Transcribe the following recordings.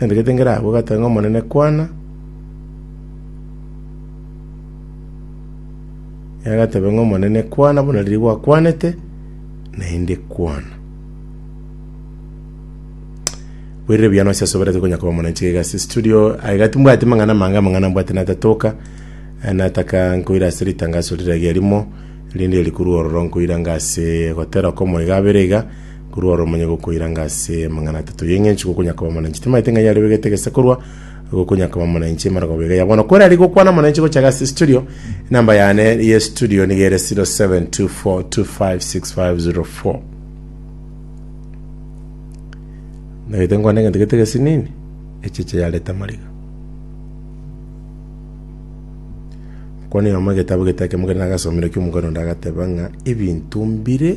Nendagete ngere agwo, ogatiga ng'a, Omonene, kwana. Ere agateba ng'a, Omonene, kwana, buna riria gwakwanete, naende kwana. Bwerire buya nonsi ase oboratiga konya koba omonenche iga ase studio. Ah, iga timbwati mang'ana mange, amang'ana mbwate natatoka. Eh, Nataka nkoire ase ritangaso rire riarimo, rinde rikorwa ororo nkoiranga ase gotera komo iga abere iga, Korwa oro omonye gokoiranga ase amang'ana atato y'engencho gokonya koba monenche. Timaete ng'a yarebegete gese korwa gokonya koba monenche emarogobwo iga ya bono. Kwerari gokwana monenche gochaga ase studio. Enamba yane ye studio niga ere 0724256504. Nagete nkwane egento gete gesi nini? Echeche yareta amariga. Mokwanire omo egetabu gete ekemo kere nagasomire ekio omokani onde agateba ng'a ebinto mbire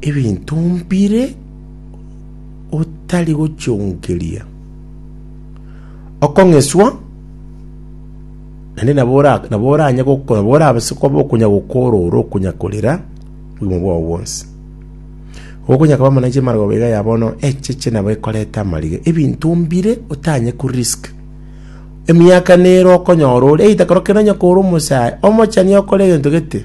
ebinto mbire otari gochionkeria okong'eswa naende nabo ora- nabo oranye goko- nabo orabase koba okonya gokorora okonya korera obogima bwao bwonsi okonya koba mana inche amarababo iga ya bono echeche nabo ekoreta amariga ebinto mbire otanye korisk emiaka nere okonyora ore either korokiro onye kore omosae omochani okore egento gete.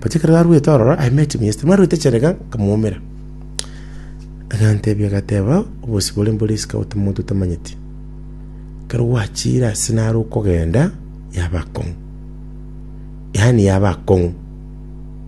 But ekero arwete ororo, I met him yesterday, mwarwete cherega, nkamoumera. Agantebia agateba, obosio bore mbore isiko ote omonto otamanyeti. Ekero gwachire ase nare okogenda, yaba akong'u. Yaani yaba akong'u.